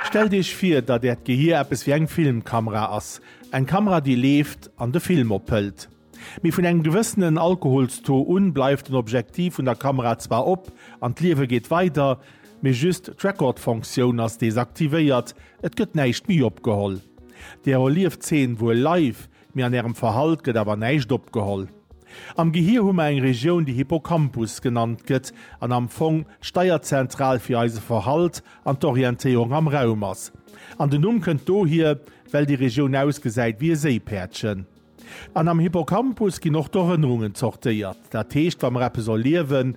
Stellt Iech vir, datt Äert Gehier eppes wéi eng Filmkamera ass. Eng Kamera, déi leeft an de Film ophëlt. Mee vun engem gewëssenen Alkoholstaux un bleift den Objektiv vun der Kamera zwar op an d'Liewe geet weider, mee just d'Record-Fonktioun ass desaktivéiert, et gëtt näischt méi opgeholl. Där erlieft d'Zeen wuel live, Mee an ärem Verhalt gëtt awer näischt opgeholl. Am Gehir hu mer eng Regioun, déi Hippocampus genannt gëtt an am Fong d'Steierzentral fir eise Verhalt an d'Orientéierung am Raum ass. An den Numm kënnt dohier, well déi Regioun ausgesäit wéi e Séipäerdchen. An am Hippocampus ginn och d'Erënnerungen zortéiert. Dat heescht, wa mer eppes erliewen,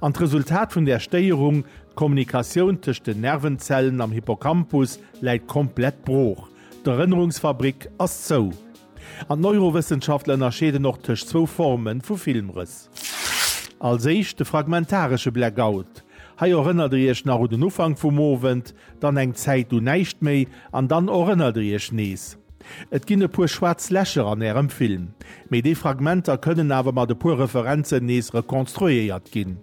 An d'Resultat vun där Stéierung, d'Kommunikatioun tëscht den Nervenzellen am Hippocampus läit komplett brooch, d'Erënnerungsfabrik ass zou. An d'Neurowëssenschaftler ënnerscheeden och tëscht zwou Forme vu Filmrëss. Als éischt de fragmentaresche Blackout, hei erënnert der iech nach un den Ufank vum Owend, dann eng Zäit un näischt méi an dann erënnert der iech nees. Et ginn e puer schwaarz Lächer an Ärem Film, mee déi Fragmenter kënnen awer mat e puer Referenzen nees rekonstruéiert ginn.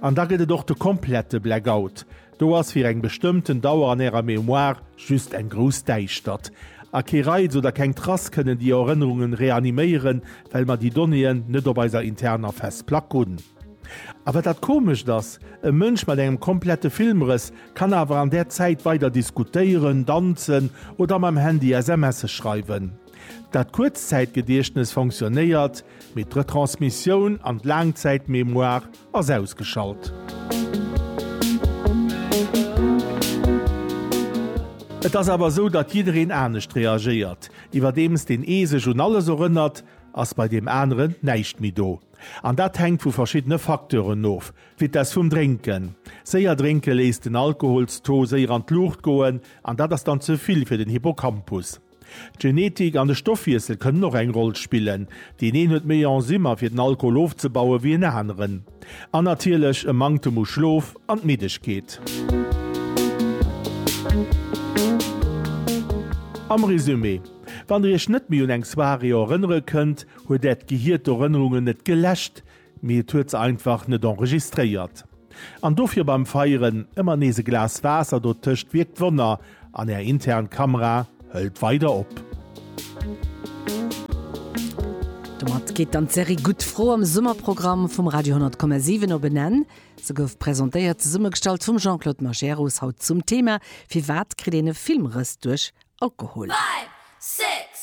An da gëtt et och de komplette Blackout, do ass fir eng bestëmmten Dauer an Ärer Mémoire just eng grouss Däischtert. A kee Reiz oder keng Trace kënnen déi Erënnerungen reaniméieren, well mer déi Donnéeën net op eiser interner Festplack hunn. A wat dat Komescht ass, e Mënsch mat engem komplette Filmrëss kann awer an där Zäit weider diskutéieren, danzen oder mam Handy SMSe schreiwen. Dat Kuerzzäitgediechtnes fonctionnéiert, mee d'Retransmissioun an d'Laangzäitmémoire ass ausgeschalt. Et ass awer esou, datt jiddereen anescht reagéiert. Iwwerdeems deen ee sech un alles erënnert, ass bei deem aneren näischt méi do. An dat hänkt vu verschiddene Facteuren of, d'Vitess vum Drénken. Séier drénke léisst den Alkoholstaux séier an d'Luucht goen an dat ass dann ze vill fir den Hippocampus. D'Genetik an de Stoffwiessel kënnen och eng Roll spillen, deen een huet méi Enzymer fir den Alkohol ofzebaue wéi en aneren. An natierlech e Manktem u Schlof an d'Middegkeet. Am Resumé, Wann der iech net méi un eng Soirée erënnere kënnt, Huet Äert Gehier d'Erënnerungen net geläscht, mee et huet se einfach net enregistréiert. An dofir beim Feieren ëmmer nees e Glas Waasser dotëscht wierkt Wonner an Är intern Kamera hëlt weider op. Domat geet dann d'Serie Gutt Fro am Summerprogramm vum Radio 10,7 op en Enn. Se gouf presentéiert, zesummegestallt vum Jean-Claude Majerus, haut zum Thema, Firwat kritt een e Filmrëss duerch Alkohol? Five, six,